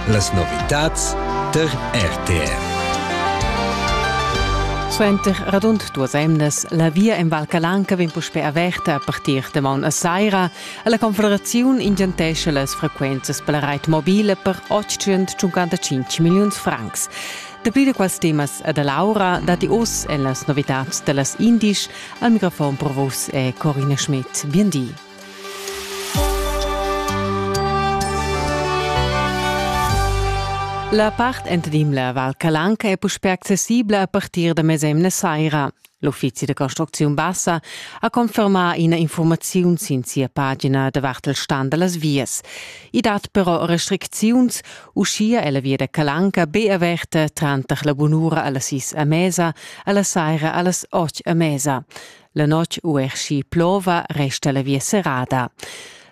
Las novitads tar RTR. Suenter radund duas emnas la via en Val Calanca vegn puspè averta a partir da maun a saira. La Confederaziun ingentescha las frequenzas per la rait mobile per 855 milliuns francs. Dapli da quels temas e da Laura datti oz en las novitads da las Indisch. Al microfon pro vos è Corina Schmidt. Bien di. La part entrim la Val Calanca è puspè accessibla a partir da mesemna saira. L'uffizi da construcziun bassa ha confermà ina informaziun sin sia pagina davart il stand da las vias. I dat però restricziuns, uschia è la via da Calanca be averta tranter la bunura a las sis a mesa, a la saira a las otg a mesa. La notg ueschi plova resta la via serrada.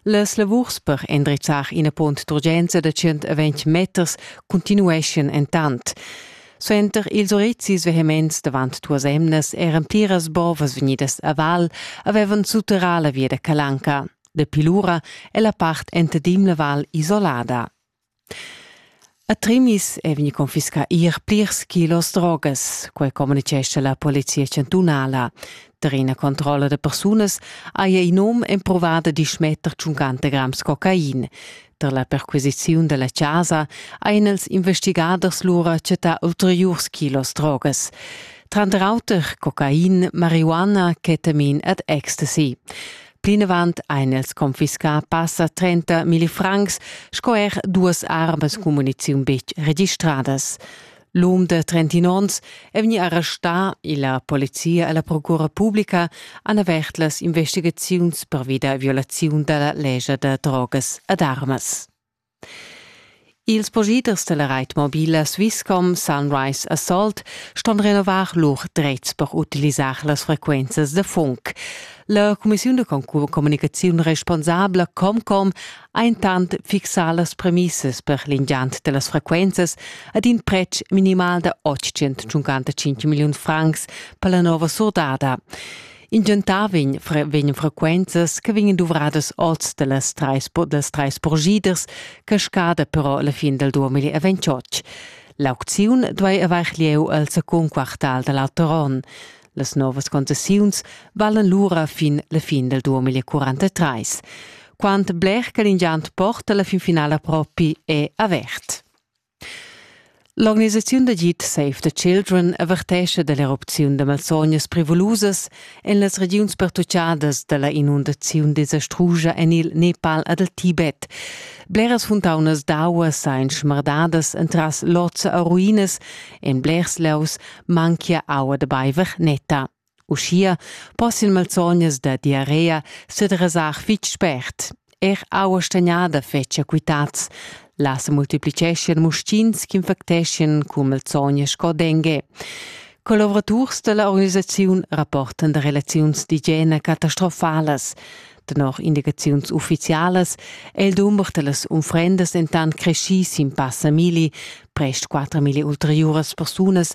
Las lavurs per endrizzar ina pont d'urgenza da 120 meters continueschan entant. Suenter ils orezis vehements davant tuas emnas eran pliras bovas vegnidas a val avevan sutterrà la via da Calanca. Dapi lura è la part enta Dimla val isolada. A Trimis è vegnì confiscà er plirs kilos drogas, quai communitgescha la polizia chantunala. Tar ina controlla da persunas haja in um empruvà da dismetter tschuncanta grams cocain. Tar la perquisiziun da la chasa hajan els investigaders lura chattà ulteriurs kilos drogas. Tranter auter cocain, marihuana, ketamin ed ecstasy. Plinavant ein els confiscà passa 30 milli francs sco er duas armas cummuniziun betg registradas. L'um de 31 onns è vegni arrestà e la polizia e la procura pubblica han avert las investigaziuns per vida violaziun della legge de drogas ed armas. Ils possiders dalla reit mobila Swisscom Sunrise Assault ston renovar lur dretgs per utilisar las frequenzas da funk. La cumissiun da communicaziun responsabla Comcom ha intant fixà las premissas per l'ingiant dellas frequenzas ad in pretsch minimal da 855 milliun francs per la nova surdada. In gentar vegn, fre vegn frequenzas che vegnan duvradas oz dallas treis, dallas treis porgiders, cascada però la fin del 2028. L'aucziun duei avair lieu al secund quartal da l'auter onn. Las novas concessiuns valen lura fin la fin del 2043. Quant bler che l'ingiant porta la fin finala propi è avert. L'organisaziun d'agid Save the Children avertescha dall'erupziun da malsognas prevulusas en las regiuns pertuchadas dalla inundaziun desastrusa en il Nepal ed il Tibet. Bleras funtaunas d'aua san schmardadas entras lozza e ruinas, en blers laus manchia aua da baiver netta. Uschia poss il malsognas da diarrea sedresar fitg spert. Er aua stagnada fetschia quitads. Là se multiplicheschian muschins ch'infecteschien cun malsognas sco dengue. Collaboraturs dalla organisaziun rapportan da relaziuns d'igiena catastrofalas. Tenor indicaziuns ufficialas è il dumber dallas unfrendas dentant creschì sin passa milli, prest 4 milli ulteriuras persunas